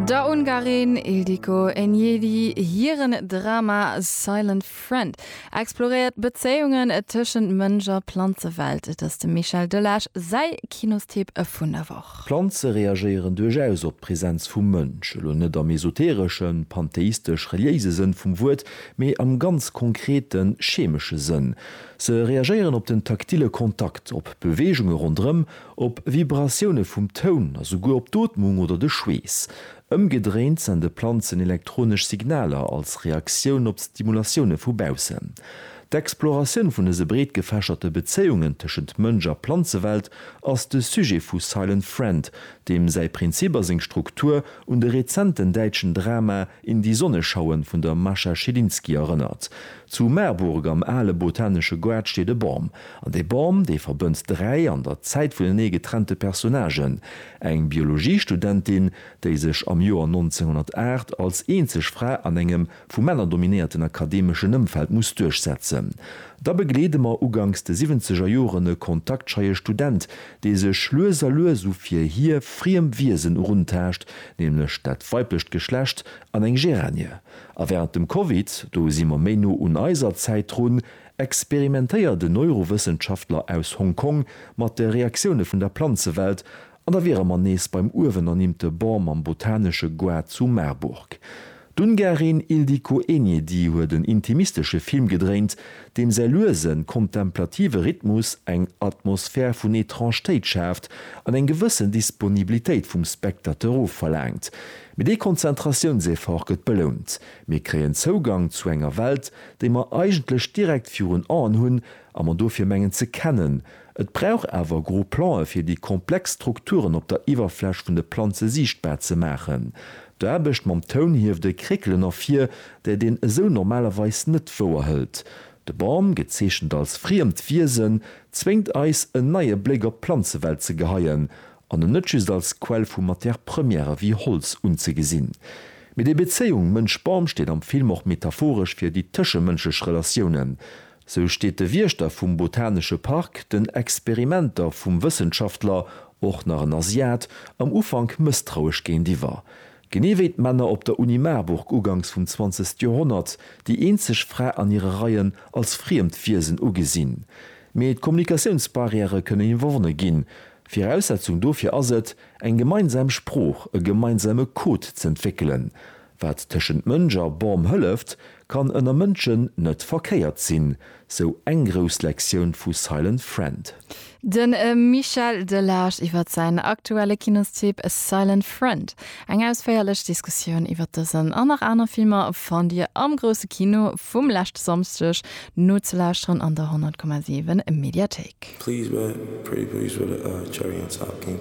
Der Ungarin Ildiko Enyedi hiren Drama Silent Friend exploréiert d'Bezéiungen tëschent Mënsch a Planzewelt. Et ass dem Michel Delage säi Kinostipp vun der Woch. Planze reagéieren duerchaus op d'Präsenz vum Mënsch, elo net am esotereschen, pantheistesch-reliéise Sënn vum Wuert, mee am ganz konkreten, chemesche Sënn. Se reagéieren op den taktile Kontakt, op Beweegunge ronderëm, Op Vibratioune vum Toun a souguer op d'Ootmung oder de Schweess. Ëmgedréint sende Planzen elektronesch Signaler als Reaktioun op d'Stimulatioune vu baussen. D'Exploratioun vun dëse breetgefächerte Bezéiungen tëschent Mënsch a Planzewelt ass de Sujet vu Silent Friend, deem säi Prinzip a seng Struktur un de rezenten däitschen Drama In die Sonne schauen vun der Mascha Schilinski erënnert. Zu Marburg am ale botanesche Goart steet e Bam, An dee Bom, dee verbënnt dräi an der Zäit vunenee getrennte Personnagen, eng Biologiestudentin, déi sech am Joer 1908 als eenzeg Fra an engem vu Männer dominéierten akademeschen Ëmfeld muss duerchsetzen. Da begleede mer uganks de siwwenzeger Joren e kontaktscheie Student, dee sech lues a lues u fir hie friem Wiesen eruntaascht, nämlech dat weiblecht Geschlecht an eng Geranie. A wärend dem Covid, do si mer méi no un eiser Zäit drun, experimentéiert en Neurowëssenschaftler aus Hong Kong mat de Reaktioune vun der Planzewelt an da wiere mer nees beim uewen ernimmte Bon mam botanesche Goût zu Marburg. D'Ungarin Ildikó Enyedi huet en intimistesche Film gedréint, deem säi luesen, kontemplative Rhythmus eng Atmosphär vun Etrangetéit schaaft an eng gewëssen Disponibilitéit vum Spectateur ofverlaangt. Mee dee Konzentratiounseffort gëtt belount, mir kréien Zougang zu enger Welt, déi mer eigentlech direkt virun Aen hunn a mer dofir mengen ze kennen, et brauch awer gro Plan'e fir déi komplex Strukturen op der Iwwerfläch vun de Planze siichtbar ze maachen. D'Aarbecht mam Toun hieft e Kréckelen ervir, dat een esou normalerweis net wouer hëlt. De Bam, gezeechent als friemt Wiesen, zwéngt eis en neie Bléck op d'Planzewelt ze geheien an en net just als Quell vu Matière première wéi Holz unzegesinn. Mee déi Bezéiung Mënsch-Bam steet am Film och metaphoresch fir déi tëschemënschlech Relatiounen. Sou steet de Wiechter vum botanesche Park den Experimenter vum Wëssenschaftler, och nach en Asiat, am Ufank mësstrauesch géintiwwer. Genee wéi d'Männer op der Uni Marburg uganks vum zwanzegste Joerhonnert, déi eenzeg Fra an hire Reien als friemt Wiesen ugesinn. Mee d'Kommunikatiounsbarrièrë kënnen iwwerwonne ginn, Viraussetzung dofir ass et, eng gemeinsam Sprooch, e gemeinsame Code z'entwéckelen. Wat tëschent Mënsch a Bam hëlleft, kann ënner Mënschen net verkéiert sinn, sou eng grouss Lektioun vu Silent Friend. De Michel Delage iwwer säin aktuelle Kinostipp Silent Friend. Eng ausféierlech Diskussioun iwwer dësen an nach aner Filmer fannt Dir am Grousse Kino vum leschte Samschdeg nozelauschteren an der 100,7 Mediathéik. Please wait, pretty please with a cherry on top, king.